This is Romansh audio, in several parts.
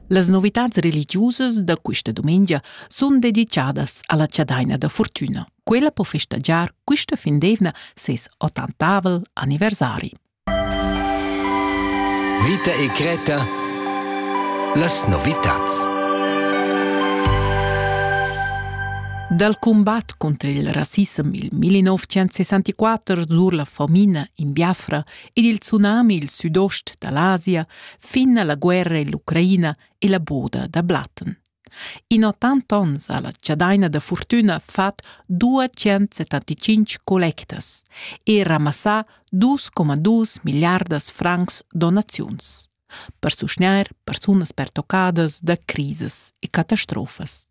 Las novitads religiusas da questa dumengia sun dedichadas alla chadaina da furtüna. Quella po festagiar quista fin d'eivna ses ottantavel anniversari. Vita e Greta Las novitats Dal combat contro il rassissem il 1964 sur la famina in Biafra ed il tsunami il südost da l'Asia fin a la guerra in l'Ucraina e la boda da Blatten. In 80 onns ha la chadaina da fortuna fat 275 collectas e ramassà 2,2 miliardas francs donaziuns per susgnair persunas pertoccadas da crisas e catastrofas.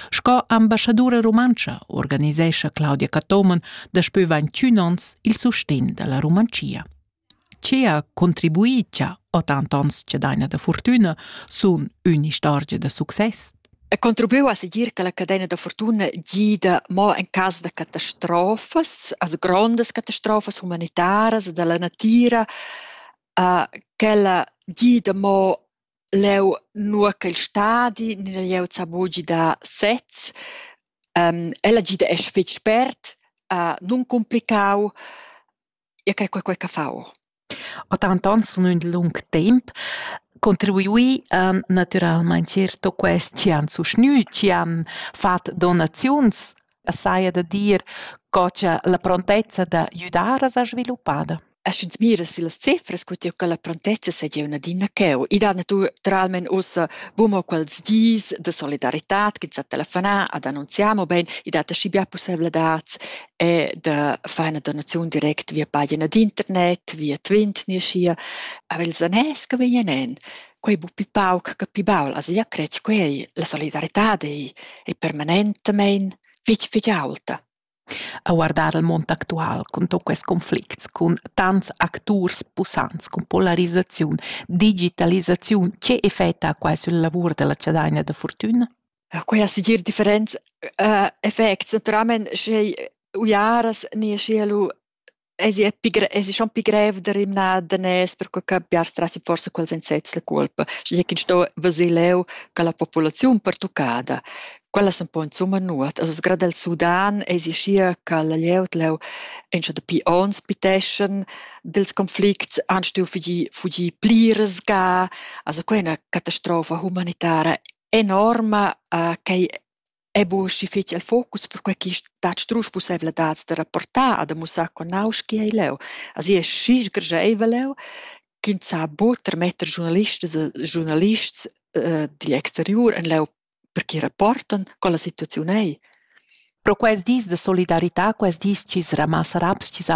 Sco ambassadura rumantscha organisescha Claudia Cathomen daspö 21 ons il sustegn da la Rumantschia. Che ha contribuì cha tant ons che daina da fortüna sun ün'istorgia da success? E contribuiu a seguir che la cadena da fortuna gida mo en cas da catastrofas, also grandes catastrofas humanitaras da la natira, uh, ch'ella gida mo Leu, nua ch'el stadi ni da glieud sa buca gidar sez. Ella gida esch fetg spert, nuncumpliccau. Io crei quei quei ch'ha fau. Denton sun ün lung temp contribuì an natüralmaing certo quest chi han suschnü, chi han fat donaziuns e saja da dir co cha la prontezza da güdar as ha sviluppada. E sch'ins mira sillas cifras cu tieu cha la prontezza segia ün'adina cheu, i dana naturalmaing ussa bun quels dis da solidarità ch'ins ha telefonà ed annunzià, mobain i dat aschi bia pussevladads e da far üna donaziun direct via pagina d'internet, via Twint, nia schia. Aber ils anès che vegnan en Quei buca pauc che pli baul ha seglia cret co ei, la solidaritad ei, ei permanentamein fetg fetg aulta. A guardar il mund actual cun tut quels conflicts, cun tants acturs pussants, cun polarisaziun, digitalisaziun, tge effect ha quai sul lavur della Chadagna da fortuna? Quei ha segir differents uh, effects. Naturalmein sche uiaras ni sche lu Esi è, pi esi schon pi grev da rimnar daners per co che biars trasi forsa quels insets la culpa, sche ch'ins sto veser leu che la populaziun pertuccada, quellas un po insumma nuot. Also grad el Sudan esi schia che la glieud leu entscha dapi onns piteschan dils conflicts, han stuiu fugir, fugir pli resga. Also quei è ina catastrofa humanitara enorma, uh, quei Ei buca fetg il focus per quei ch'i dat strusch pusseivladads da rapportar e da mussar co nauschi ei leu. Asi è schi sgrescheivel leu ch'ins sa buca tarmetter giurnalistas e giurnalists digl exteriur en leu per ch'i rapportan co la situaziun ei. Pro quels dis da solidarità, quels dis chi's ramassa raps, chi's